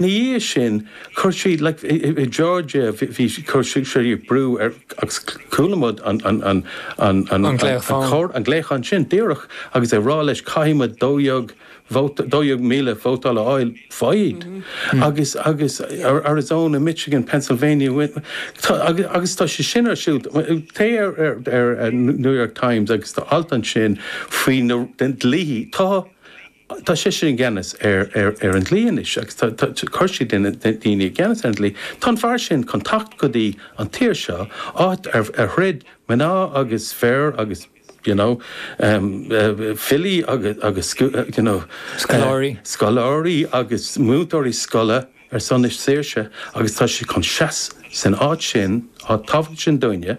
Ina dhiaidh sin, chuir sí, like, Georgia, bhí, chuir sí, sé brú air, agus chuala muid an, an, an, an, an, an glaoch, an glaoch sin díreach agus é rá leis, caithfidh muid dó dhéag, dó dhéag míle vóta a fháil, fháil, agus, agus Arizona, Michigan, Pennsylvania, tá, agus, agus tá sé sin ar siúl, téigh ar, ar, ar New York Times agus tá alt ansin faoi na, dlíthe, tá, Tá sé, sé i gceannas ar an dlí anois agus tá a chuid daoine i gceannas ar an dlí. Tá an fear sin chun teacht go dtí an tír seo, áit ar throid mná agus fir agus, you know, filí agus, you know, scoláirí agus múinteoirí scoile ar son a saoirse agus tá sé chun seasamh san áit sin, áit thábhachtach sin dúinne.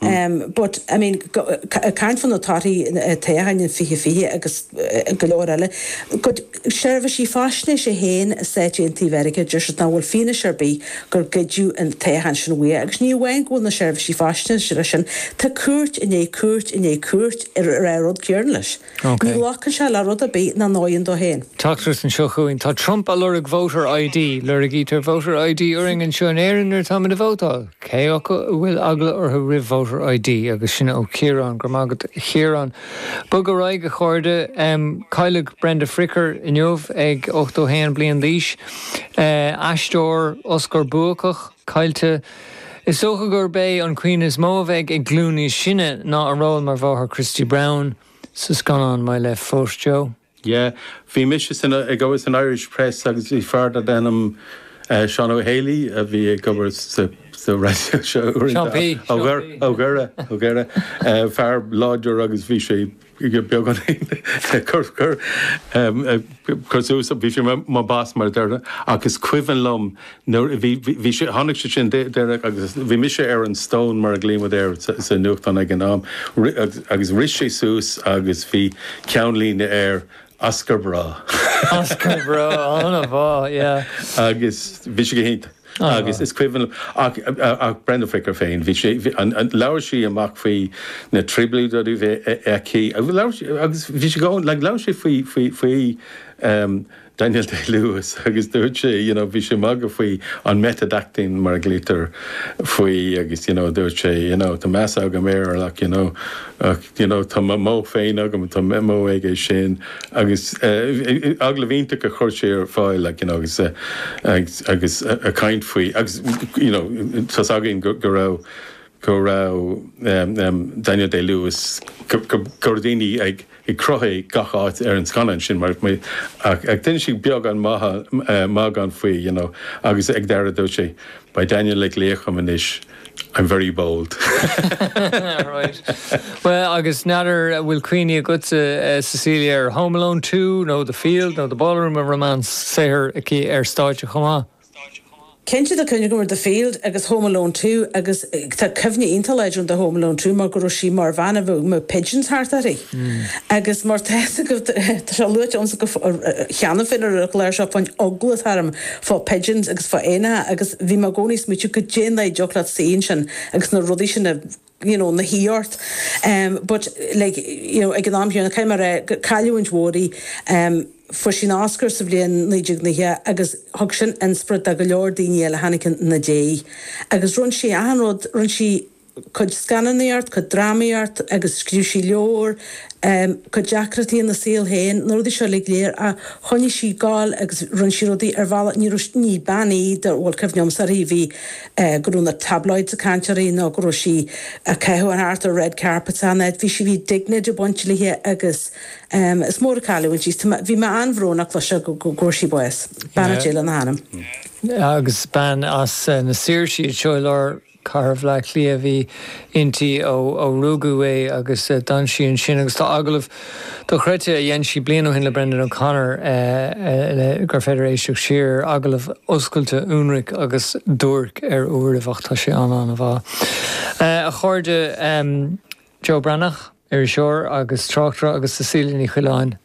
But, I mean, ag caint fá na torthaí toghcháin 20 20 agus go leor eile, go dtí seirbhísí faisnéise féin i Stáit Aontaithe Mheiriceá, deir siad nach bhfuil fianaise ar bith gur goideadh an toghchán sin uaidh. Agus ní amháin go bhfuil na seirbhísí faisnéise sin, tá cúirt i ndiaidh cúirt i ndiaidh cúirt ag rá an rud céanna leis. Ní ghlacann sé le rud ar bith nach bhfóireann dó féin. Teachtaireacht anseo chugainn, Tá Trump á lorg Voter ID. Lorgaítear Voter ID orainn anseo in Éirinn nuair atáimid ag vótáil. Cé acu a bhfuil eagla orthu roimh Voter ID? Agus sin ó Chiarán. Go raibh maith agat, a Chiaráin. Bogaimis ar aghaidh, a chairde. Cailleadh Brenda Fricker inniu ag 81 bliain d'aois. Aisteoir Oscar-bhuach. caillte. Is dócha gurb é an chuimhne is mó a bheidh ag glúin níos sine ná a ról mar mháthair Christy Brown sa scannán My Left Foot, Joe. Yeah. Bhí mise san, ag obair san Irish Press agus bhí fear darbh ainm Seán Ó hÉalaí a bhí ag obair sa, sa raidió seo uaireanta, Seán P. Ó Gaora, Ó Gaora, Ó Gaora, fear láidir agus bhí sé, beagáinín cur suas, bhí sé ina bhas mar a deirtear ach is cuimhin liom nuair a bhí, bhí sé, tháinig sé sin deireadh agus bhí mise ar an stone mar a ghlaomar air sa nuachtán ag an am agus rith sé suas agus bhí ceannlíne air, Oscar Bravo. Oscar Bravo, an-mhaith, yeah. Agus bhí sé go hiontach. Agus is cuimhin liom, ach Brenda Fricker féin, bhí sí, labhair sí amach faoi na trioblóidí a bhí aici, agus bhí sí go han, like, labhair sí faoi, faoi, faoi Daniel Day-Lewis agus dúirt sí, you know, bhí sí ag magadh faoi an method acting mar a ghlaoitear air agus, you know, dúirt sí, you know, tá meas agam air, like, you know, ach. you know, tá mo mhodh féin agam, tá mo mhodh ag é sin, agus agallamh iontach a chuir sé ar fáil, like, you know, agus a, agus ag caint faoi, agus, you know, tá's againn go raibh, go raibh Daniel Day-Lewis, go, go, go raibh daoine ag, ag croitheadh i gach áit ar an scannán sin, mar, mar, ach ag duine siúd beagán maith, maith gan faoi, you know, agus ag deireadh dúirt sé, bhí Daniel mar laoch dhom anois. I'm very bold. All right. Bhuel, agus n'fheadar a bhfuil cuimhní agatsa, Cecilia, ar Home Alone 2 nó The Field nó The Ballroom of Romance, saothar aici ar stáitse chomh maith? Cinnte, tá cuimhne agam ar The Field agus Home Alone 2 agus tá cuimhne iontach láidir agam de Home Alone 2 mar go raibh sí mar bhean a bhí na pigeons thart uirthi. Agus mar tá sé luaite agamsa cheana féin ar an gclár seo fán eagla atá orm, fá pigeons agus fá éanacha agus bhí mé i gcónaí ag smaoitiú goidé an dóigh a dtiocfadh leat suí ansin agus na rudaí sin a, you know, na shuí ort em but like, you know, ag an am chéanna, caithfidh mé a rá gur cailliúint mhór í em fuair sí an Oscar sa bhliain naoi déag nócha agus thug sin inspioraid do go leor daoine eile a tháinig ina diaidh agus rinne sí achan rud, rinne sí. cuid scannánaíocht, cuid drámaíocht, agus scríobh sí leabhar, cuid deacrachtaí ina saol féin, na rudaí seo uilig léir, ach choinnigh sí ag gabháil agus rinne sí rudaí ar bhealach, ní raibh, ní bean í de, bhuel, cuimhne agamsa uirthi, a bhí, go raibh na tabloids ag caint uirthi nó go raibh sí ag caitheamh thart ar red carpets ann, ait, bhí sí, bhí dignity ag baint léi agus is mór an chailliúint í, bhí mé an-bhrónach leis seo go bhfuair sí bás, beannacht Dé lena hanam. Agus bean as na Saoirsí, seo i lár. Chathair Bhleá Cliath a bhí inti ó rugadh í agus d'fhan sí ansin agus tá agallamh dochreidte a dhein sí bliain ó shin le Brendan O'Connor agus gur féidir éisteacht siar air, agallamh oscailte, ionraic agus duairc ar uairibh ach tá sé an-an-mhaith. A chairde, Joe Breathnach, iriseoir agus tráchtaire agus Cecilia Ní Choileáin,